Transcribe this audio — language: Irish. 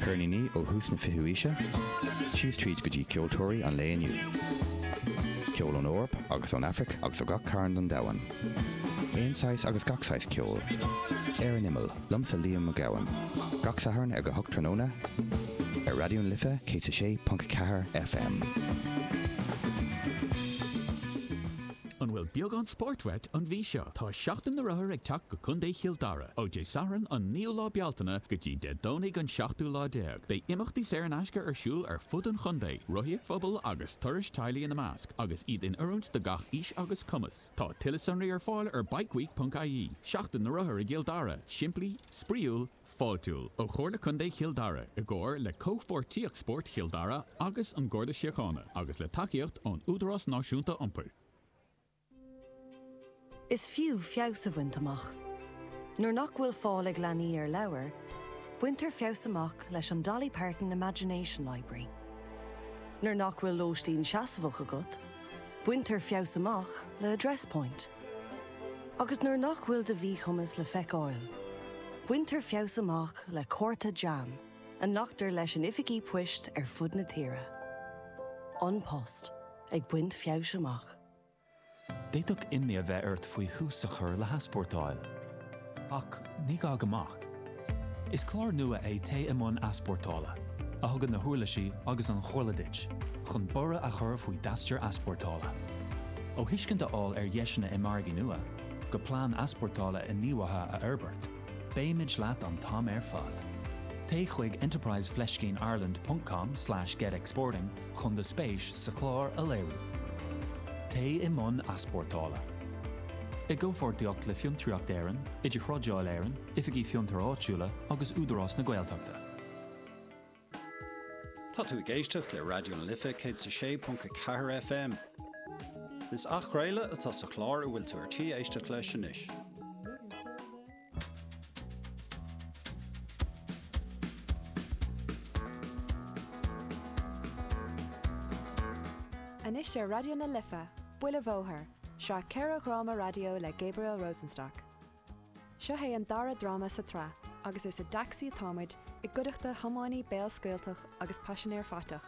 ceirníní ó thús na fichiú haoise síos tríd go dtí ceoltóirí an lae inniu. Ceol ón Eoraip agus ón Aifric agus ó gach cearn den domhan. Aon saghas agus gach saghas ceoil. Ar an imeall, liomsa Liam Mac Gabhann. Gach Satharn ag a hocht tráthnóna ar Raidió na Life 106.4 FM. An bhfuil beagán spóirt uait an mhí seo? Tá Seachtain na Rothar ag teacht go Contae Chill Dara. Ó Dé Sathairn an 9ú lá Bealtaine go dtí Dé Domhnaigh an 17ú lá, beidh imeachtaí saor in aisce ar siúl ar fud an chontae, rothaíocht phobail agus turais teaghlaigh ina measc, agus iad in oiriúint do gach aois agus cumas. Tá tuilleadh sonraí ar fáil ar bikeweek.ie. Seachtain na Rothar i gCill Dara, simplí, spraíúil, fáiltiúil. Ó Chomhairle Contae Chill Dara i gcomhar le Comhpháirtíocht Spóirt Chill Dara agus an Garda Síochána agus le tacaíocht ón Údarás Náisiúnta Iompair. Is fiú feabhas a bhaint amach. Nuair nach bhfuil fáil ag leanaí ar leabhair, baintear feabhas amach leis an Dolly Parton Imagination Library. Nuair nach bhfuil lóistín seasmhach agat, baintear feabhas amach le Address Point. Agus nuair nach bhfuil do mhíchumas le feiceáil, baintear feabhas amach le cárta JAM a nglactar leis in oifigí poist ar fud na tíre. An Post ag baint feabhais amach. D'fhéadfadh imní a bheith ort faoi thús a chur le heaspórtáil. Ach ní gá go mbeadh. Is clár nua é Téigh i mbun Easpórtála, a thugann na huirlisí agus an chomhairle duit chun borradh a chur faoi d'aistear easpórtála. Ó thuiscint a fháil ar dheiseanna i margaí nua, go plean easpórtála inghníomhaithe a fhorbairt, beimid leat an t-am ar fad. Téigh chuig enterprise fleiscín ireland ponc com slash get exporting chun do spéis sa chlár a léiriú. Téigh i mbun easpórtála. I gcomhpháirtíocht le Fiontraíocht Éireann, Idirthrádáil Éireann, Oifigí Fiontair Áitiúla agus Údarás na Gaeltachta. Tá tú ag éisteacht le Raidió na Life 106.4 FM. Is athchraoladh atá sa chlár a bhfuil tú ar tí éisteacht leis anois. Anois ar Raidió na Life, Buile Bhóthair, sraith ceithre dhráma raidió le Gabriel Rosenstock. Seo é an dara dráma sa tsraith agus is i dtacsaí atá muid i gcuideachta tiománaí béalscaoilteach agus paisinéir faiteach.